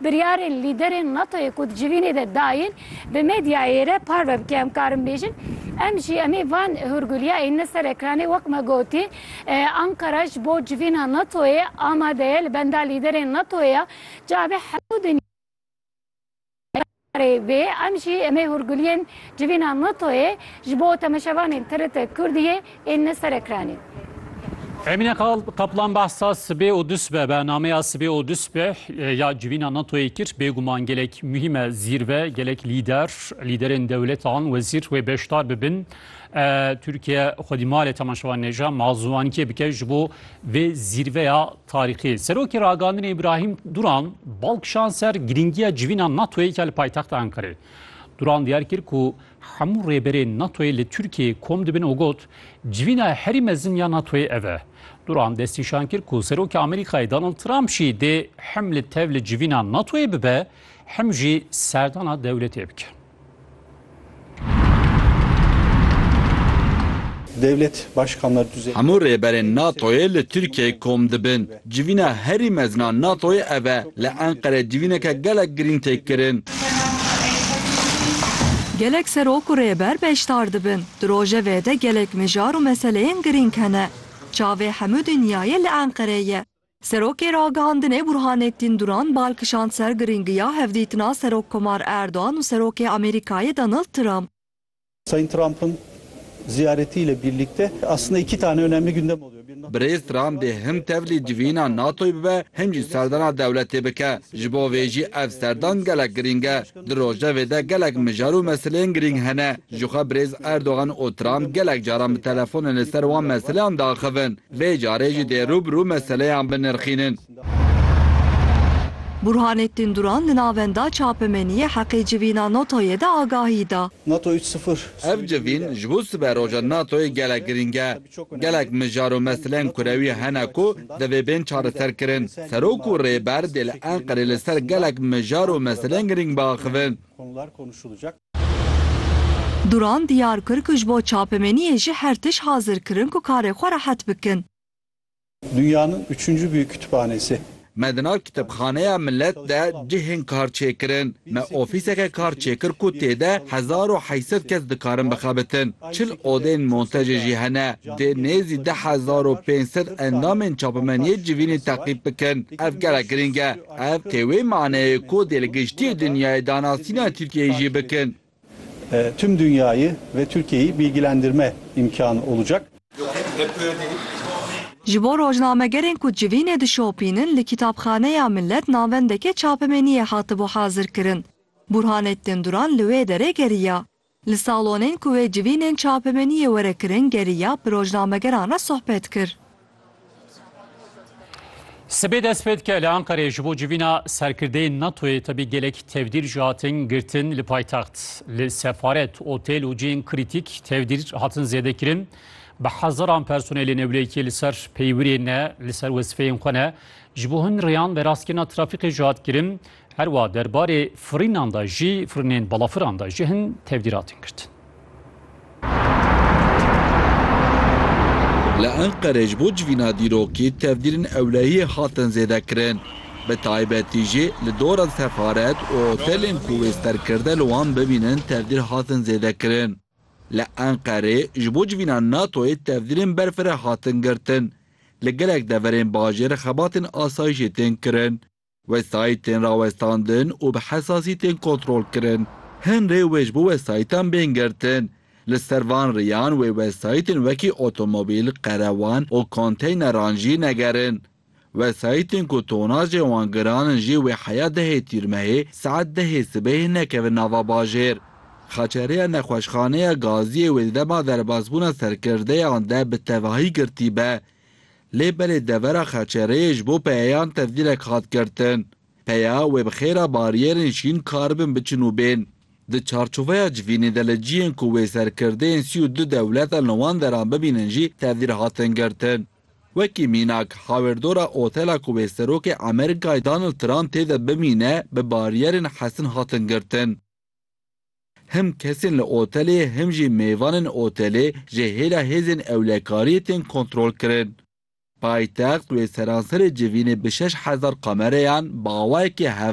Biryarên lîderên NATO'yê ku di civînê de dayên bi medyayê re parve bike em karin bêjin em jî em ê van hûrgulîya ênine ser ekranê wek me gotî Anqara ji bo civîna NATO'yê amade ye li benda lîderên NATO'yê ya cavê hemû dinyayê Erê vê em jî em ê hûrguliyên civîna NATO'yê ji bo temeşevanên TRT Kurdiyê ên li ser ekranê. Emîne Kaplan behsa sibê û dusbeh bernameya sibê û dusbeh ya civîna NATO'yê kir. Bêguman gelek muhîm e zîrve gelek lîder, lîderên dewletan, wezîr wê beşdar bibin. Tirkiye xwedî malê temeşevanê ja ma ziwanikê bike ji bo vê zîrveya Tarîxê, Serokê Ragandinê Îbrahîm Duran bal kişand ser girîngiya civîna NATO'yê ke li paytexta Enqereyê. Duran diyar kir ku hemû rêberên NATO'yê li Tirkiyeyê kom dibin û got, Civîna herî mezin ya NATO'yê ev e. Duran destnîşan kir ku Serokê Amerîkayê Donald Trump jî dê him li tev li civîna NATO'yê bibe him jî serdana dewletê bike. Dewlet Başkanlar Düzeyi. Hemû rêberên NATO'yê li Tirkiyeyê kom dibin. Civîna herî mezin a NATO'yê ev e. Li Enqereyê civîneke gelek girîng tê kirin. Gelek serok û rêber beşdar dibin. Di rojevê de gelek mijar û meseleyên girîng hene. Çavê hemû dinyayê li Enqereyê ye. Serokê Ragihandinê Burhanettin Duran bal kişand ser girîngiya hevdîtina Serokkomar Erdogan û Serokê Amerîkayê Donald Trump. Sayın Trump'ın ziyaretiyle birlikte aslında iki tane önemli gündem oluyor. Bir NATO Birêz Trump dê him tevlî civîna NATO'yê bibe him jî serdana dewletê bike. Ji bo vê jî ev serdan gelek girîng e. Di rojevê de gelek mijar û meseleyên girîng hene. Jixwe birêz Erdogan û Trump gelek caran bi telefonê li ser wan meseleyan diaxivin. Vê carê jî dê rû bi rû meseleyan binirxînin. Burhanettin Duran li navenda çapemeniyê Heqê Civîna NATO'yê de agahî da. NATO üç sıfır. Ev civîn ji bo siberoja NATO'yê gelek girîng e. Gelek mijar û meseleyên kurewî hene ku divê bên çareserkirin. Serok û Rêber dê li Enqerê li ser gelek mijar û meseleyên girîng biaxivin. Duran diyar kir ku ji bo çapemeniyê jî her tişt hazir kirin ku karê xwe rehet bikin. Dünyanın üçüncü büyük kütüphanesi. Me di nav Kitêbxaneya Milet de cihên kar çêkirin. Me ofîseke kar çêkir ku tê de hezar û heşt sed kes dikarin bixebitin. Çil odeyên monsejê jî hene. Dê nêzî deh hezar û pênc sed endamên çapimeniyê civînê teqîb bikin. Ev gelek girîng e. Ev tê wê maneyê ku dê li giştî dinyayê danasîna Tirkiyeyê jî bikin. Tüm dünyayı ve Türkiye'yi bilgilendirme imkânı olacak. Ji bo rojnamegerên ku civînê dişopînin li Kîtabxaneya Millet navendeke çapemeniyê hatibû hazirkirin. Burhanettin Duran li wê derê geriya. Li salonên ku wê civînên çapemeniyê were kirin geriya bi rojnamegeran re sohbet kir. Sibê dest pê dike li Ankareyê ji bo civîna serkirdeyên NATOyê tevî gelek tevdîr jî hatin girtin li paytext. Li sefaret, otêl û cihên krîtîk tevdîr hatin zêdekirin. Bi hezaran personelê newlêkî li ser peywirê ne, li ser wezîfeyên xwe ne. Ji bo hin rêyan veraskirina trafîkê jî hat kirin. Herwa derbarê firînan de jî, firînên balafiran de jî hin tevdîr hatin girtin. Li Enqerê ji bo civîna dîrokî tevdîrên ewlehiyê hatin zêdekirin. Bi taybetî jî li dora sefaret û otelên ku wê ser kirde li wan bibînin tevdîr hatin zêdekirin. Li Enqerê ji bo civîna NATO'yê tevdîrên berfireh hatin girtin. Li gelek deverên bajêr xebatên asayîşê tên kirin. Wesayît tên rawestandin û bi hesasî tên kontrolkirin. Hin rê wê ji bo wesayîtan bên girtin. Li ser van riyan wê wesayîtên wekî otomobîl, qerewan û konteyneran jî negerin. Wesayîtên ku tonajên wan giran in jî wê heya dehê tîrmehê saet dehê sibehê nekevin nava bajêr. Xeçerêya nexweşxaneya gaziyê wê di dema derbasbûna serkirdeyan de bi tevahî girtî be. Lê belê devera Xeçereyê ji bo peyeyan tevdîrek hat girtin. Peya wê bi xêra bariyerên şîn karibin biçin û bên. Di çarçoveya civînê de li ciyên ku wê serkirdeyên sî û du dewletan li wan deran bibînin jî tevdîr hatin girtin. Wekî mînak, hawirdora otela ku wê Serokê Amerîkayê Donald Trump tê de bimîne bi bariyerên hesin hatin girtin. Him kesên li otelê him jî mêvanên otelê ji hêla hêzên ewlekariyê tên kontrolkirin. Paytext wê seranserê civînê bi şeş hezar kamereyan bi awayekî hevdeh.